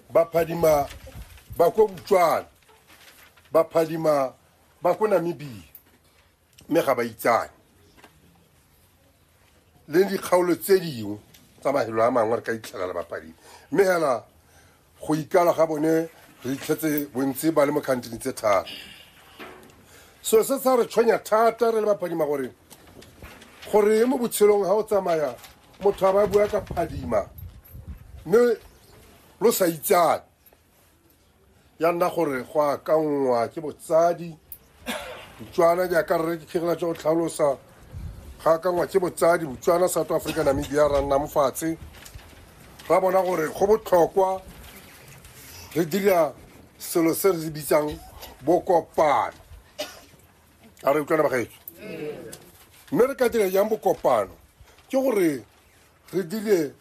baphadima ba ko botswana baphadima ba ko namibia mme ga ba itsane le dikgaolo tse dingwe tsa mahelo a mangwe re ka itlhelela baphadima mme fela go ikala ga bone re itlhetse bontsi ba le mo kgantini tse thata so se sa re tshwenya thata re le baphadima gore gore mo botshelong ga o tsamaya motho a ba bua ka phadima mme lo sa itsane ya nna gore go akanngwa ke botsadi botswana jaaka rre ke kgegela tsa go tlhalosa ga akanngwa ke botsadi botswana south africa namibia ra nna mofatshe ra bona gore go botlhokwa re dira selo se re se bitsang bokopano a re utlwana bagaetso mme re ka dira jang bokopano ke gore re dire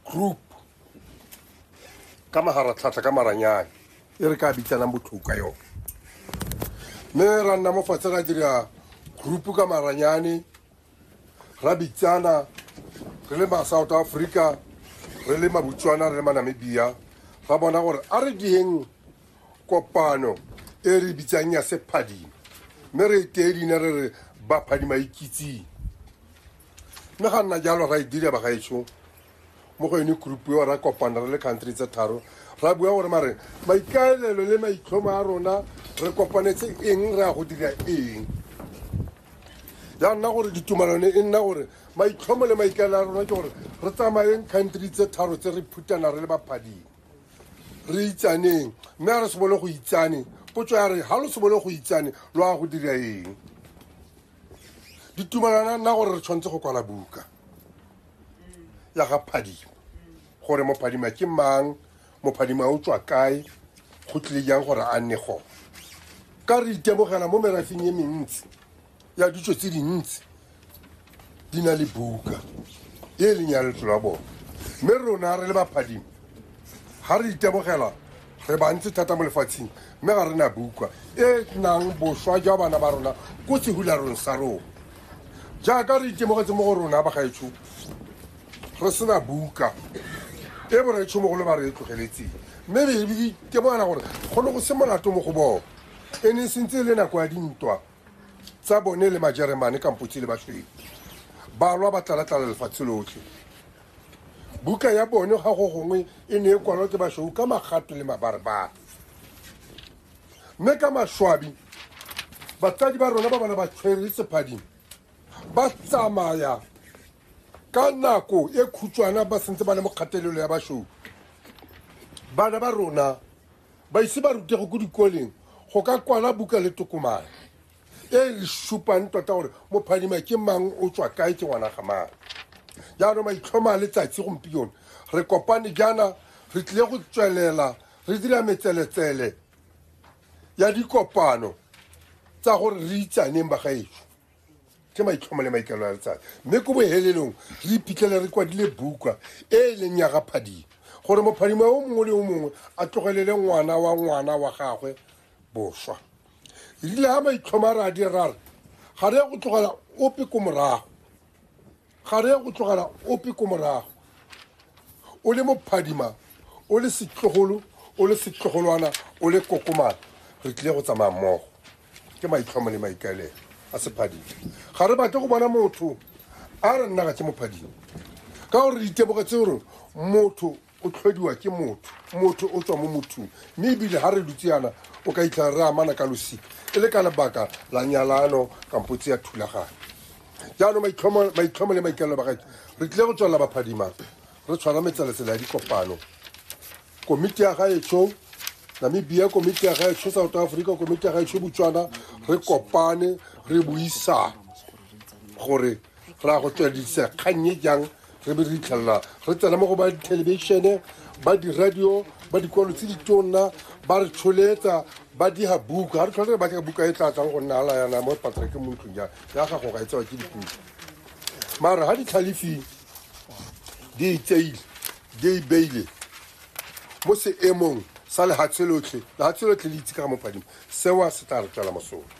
group ka magaratlhatlha ka maranyane e re ka bitsanang botlhoko ka yone mme ra nna mo fatshe ra dira group ka maranyane ra bitsana re le ma south africa re le mabutswana re le manamibia ra bona gore a re dieng kopano e re bitsang ya sephadima mme re tee leina re re baphadima ikitsing mme ga nna jalo ra e dira ba gaetsho mo go yone group eo ra kopana re le country tse tharo ra bua gore mare maikaelelo le maitlhomo a rona re kopanetse eng re ya go dira eng ya nna gore ditumalano e nna gore maitlhomo le maikaelelo a rona ke gore re tsamayeng country tse tharo tse re phutana re le baphadimo re itsaneng mme a re sebole go itsane potso ya re ga lo sebole go itsane lo a go dira eng ditumalana nna gore re tshwanetse go kwala buka ya ga phadima gore mophadima ke mang mophadima o tswa kae go tlile jang gore a nne gone ka re itemogela mo merafeng e mentsi ya ditso tse dintsi di na le buka e e leng ya letlo la bone mme rona re le baphadimo ga re itemogela re bantsi thata mo lefatsheng mme ga re na buka e nang boswa jwa bana ba rona ko sehularong sa rona jaaka re itemogetse mo go rona bagaetsho re sena buka e boretšho mogolo ba re e tlogeletseng mme re itemogela gore go ne go se molato mo go bone e ne e sentse e le nako ya dintwa tsa bone le majeremane kampotse le basweu ba lwa ba tlalatlala lefatshe lotlhe buka ya bone ga go gongwe e ne e kwalwa ke basweu ka magato le mabarebare mme ka maswabi batsadi ba rona ba bana ba tshwere sephading ba tsamaya ka nako e khutshwana ba sentse ba le mo kgatelelo ya basweu bana ba rona baise ba rutego ko dikoleng go ka kwala buka le tokomane e re supang tota gore mophadima ke mang o tswa kae ke ngwana ga mang jaanong maitlhoma a letsatsi gompione re kopane jaana re tlile go tswelela re dira metseletsele ya dikopano tsa gore re itsaneng bagaetso ke maitlhomo le maikelo a letsatsi mme ko bohelelong re iphitlhele re kwadile buka e e leng ya gaphadimo gore mophadimo o mongwe le o mongwe a tlogelele ngwana wa ngwana wa gagwe boswa rile ga maitlhomo a re a dire ra re ga re ya go tlogela ope ko morago Ga re ya go tlogela ope ko morago. O le mophadima, o le setlogolo, o le setlogolwana, o le kokomana, re tlile go tsamaya mmogo. Ke maitlhomo le maikaelelo a sephadima. Ga re batle go bona motho a re nna ga ke mophadima. Ka gore re iteboga tse gore motho o tlhodiwa ke motho motho o tswa mo mothong mme ebile ga re dutse yana o ka itlhela re amana ka losika e le ka lebaka la nyalano kampo tse ya thulaganyo jaanong maitlhomo le maikalelo ba gae re tlile go tswelela baphadimang re tshwara metseletsela ya dikopano komiti ya gaetsho namibia komiti ya gaetsho south africa komiti ya gaetsho botswana re kopane re buisang gore ra go tsweledisa kgannye jang re be re itlhelela re tsena mo go ba dithelebishene ba diradio ba dikwalo tse di tonna ba re tsholetsa ba diga buka ga re tlhole re batla buka e tla tlang go nna ala yana mo patsa ke mo ntlong ya ya gago ga e tsewa ke dipuka mara ga ditlhalefing di itseile di ibeile mo seemong sa lehatshe lotlhe lehatshe lotlhe le itse ka ga mopadimo sewa se tla re tswela mosola